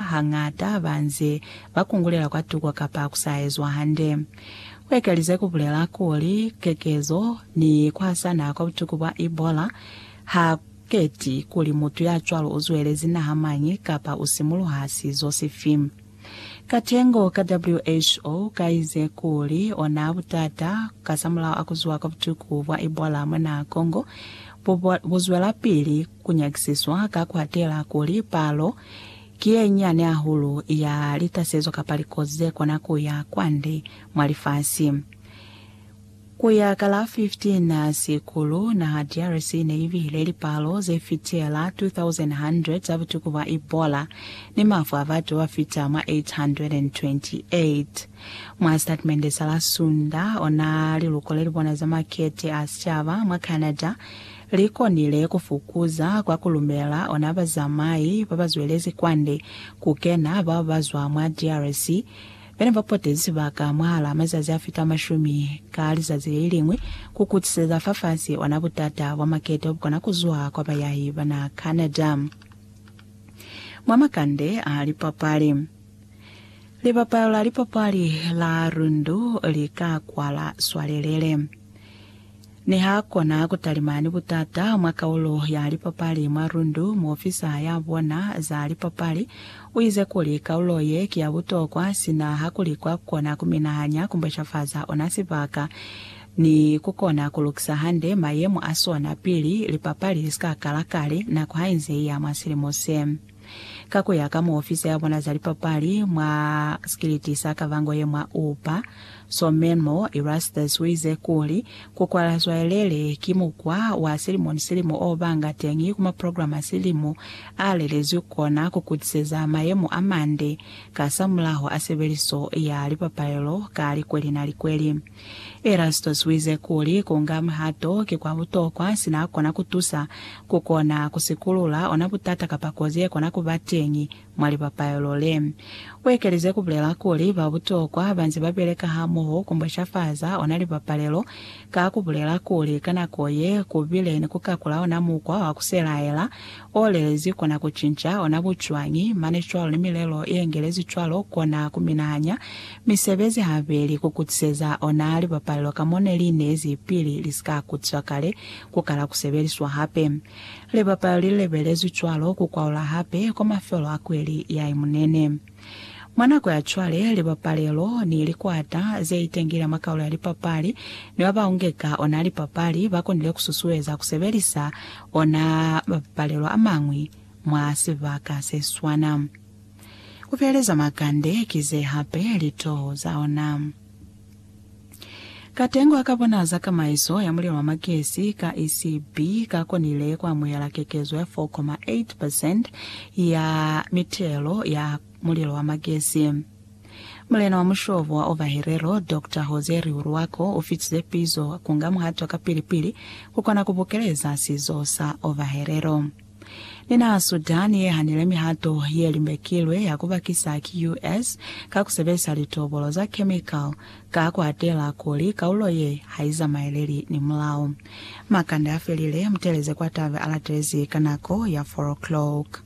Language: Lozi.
hañata ba nze ba kungulela kwa tuko kapa ku sa ezwa hande. Ku ekelize ku bulela kuli, kekezo ni ku hasana kwa butuku bwa Ebola ha ku keti kuli mutu ya cwalo u zwelezi naha mañi kapa u simuluha sizo sifi. Katengo ka WHO ka ize kuli ona butata kasamulaho a ku zuha kwa butuku bwa Ebola mwa naha Congo bu zwelapili. Ku nyakisiswa ka ku atela kuli palo ki ye nyane hahulu ya litasezo kapa likozi ze kona ku ya kwande mwa lifasi. Ku ya ka la 15 Sikulu, naha DRC ne i bihile lipalo ze fitela 2,100 za butuku bwa Ebola ni mafu a batu ba ba fita mwa 828. Mwa sitatimende sa la Sunda, ona liluko le li bona za makete a sicaba mwa Canada, Li konile ku fukuza kwa ku lumela ona bazamai ba ba zwelezi kwande ku kena bao ba zwa mwa DRC be ne ba potezi sibaka mwahal'a mazazi a fita mashumi ka lizazi le liñwi ku kutiseza fafasi ona butata bwa maketo bu kona ku zuha kwa bayahi ba naha Canada mwa makande a lipapali. Libapalo la lipapali la Rundu li ka kwala swalelele. Ne ha kona ku talima ni butata mwa kaulo ya lipapali mwa Rundu, muofisa ya bona za lipapali u ize kuli, Kaulo ye ki ya butokwa sina ha ku li kwa kona ku minahanya, ku mboshafaza ona sibaka, ni ku kona ku lukisa hande mayemo a sona pili lipapali li si ka kala kale nako ha inze i ya mwa silimo se. Ka ku ya ka muofisi ya bona za lipapali mwa sikiliti sa Kavango ye mwa Oupa, Somenmo Erastus u ize kuli, ku kwala zwayelele ki mukwa wa silimo ni silimo o banga teñi ku maprograma a silimo a lelezwi ku kona ku kutiseza mayemo a mande kasamulaho a sebeliso ya lipapalelo ka likweli na likweli. Erastus wize kuli, kunga mihato ki kwa butokwa sina kona kutusa kukona kusikulula ona butata kapa kozi yekona kuba teñi mwa lipapaelo le. Uekelize kubulela kuli, Ba butokwa banze babeleka hamoho kumboshafaza ona lipapalelo ka kubulela kuli, ka nako ye, kubile ni kukakula ona mukwa wa kuselaela O lelezi kona ku cinca ona ku cwañi, mane cwalo ni milelo ye ngelezi cwalo kona ku minahanya misebezi habeli ku kutiseza ona lipapalelo ka mo ne li nezi pili li si ka kutiswa kale ku kala ku sebeliswa hape. Lipapalelo li lebelezwi cwalo ku kwaula hape kwa mafelo a kweli ya imunene. Mwa nako ya cwale, libapalelo ni likwata ze itengile mwa kaulo ya lipapali ni ba ba ungeka ona lipapali ba konile ku susueza ku sebelisa ona mabapalelo a mañwi mwa sibaka se swana. Ku feeleza makande ki ze hape litoho za ona. Katengo a ka bona za kamaiso ya mulilo wa magesi ka ECB ka konile ku amuhela kekezo ya 4,8 percent ya mitelo ya mulilo wa magesi. Mulena wa mushobo wa Ovaherero, Doctor Jose Rihuruaco, u fitize pizo ku nga muhato wa kapili-pili ku kona ku bukeleza sizo sa Ovaherero. Ni na Sudan ye hanile mihato ye limbekilwe ya ku bakisa ki US ka ku sebelisa litobolo za chemical ka ku atela kuli kaulo ye ha i zamaeleli ni mulao. Makande a felile, muteleze kwa tabe a latelezi ka nako ya 4 o'clock.